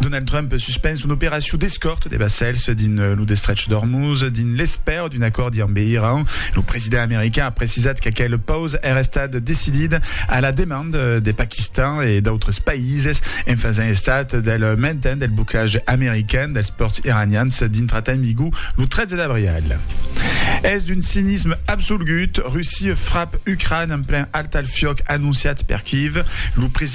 Donald Trump suspens son operacion d'escòrt de vassèls dins lo destrech d'Ormuz dins l'espèra d'un acòrdi ambe Iran. Lo president american a precisat qu'aquel paus èra estat decidit a la demanda de Paquistan e d'autres païses en fasent estat del mainten del boclatge american dels pòrts iranians dintrat en vigor lo 13 d'abrial. Es d'un cinisme absolgut, Russia frap Ucràina en plen altalfiòc anonciat per Kyiv. Lo president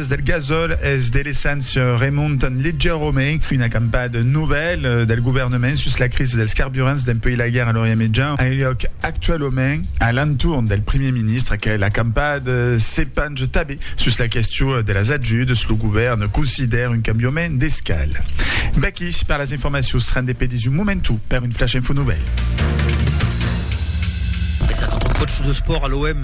L'As del Gasòl es de l'essent Raymond Legeromé, una campada novèla del governament sus la crisi dels carburants dempuèi la guèrra a l'Orient Mejan a liòc actualament a l'entorn del primièr ministre. Aquela campada se pange tanben sus la question de las ajudas. Lo govèrn considèra un cambiament d'escala. Vaqui per las informacions. Ren de pedís un momentu per un flash info novèl. Còtsh d'espòrt a l'OM.